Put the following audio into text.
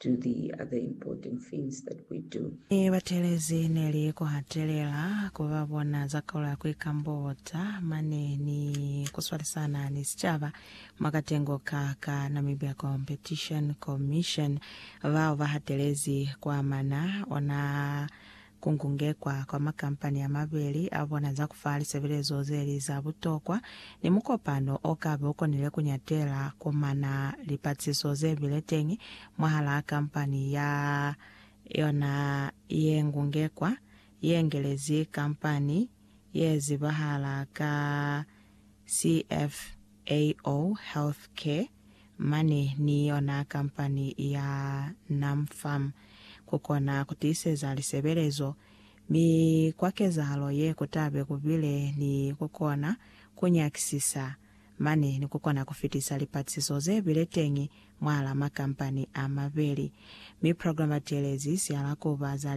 do the other important things that we do. Ne ba telezi ne li ku hatelela ku ba bona za kaulo ya ku ikambota mane ni ku swalisana ni sicaba mwa katengo ka ka Namibia Competition Commission bao ba hatelezi ku amana ona Ku ngungekwa kwa makampani a mabeli a bona za ku fa lisebelezo ze li za butokwa ni mukopano o ka be u konile ku nyatela ku mana lipaciso ze bile teñi mwahalaa kampani ya yona ye ngungekwa ye ngelezi kampani ye zibahala ka CFAO Healthcare mane ni yona kampani ya NamFarm ku kona ku tiiseza lisebelezo, mi kwa kezahalo ye ku tabe ku bile ni ku kona ku nyakisisa mane ni ku kona ku fitisa lipatisiso ze bile teñi mwahala makampani a mabeli, mi programatelezi sihala ku ba za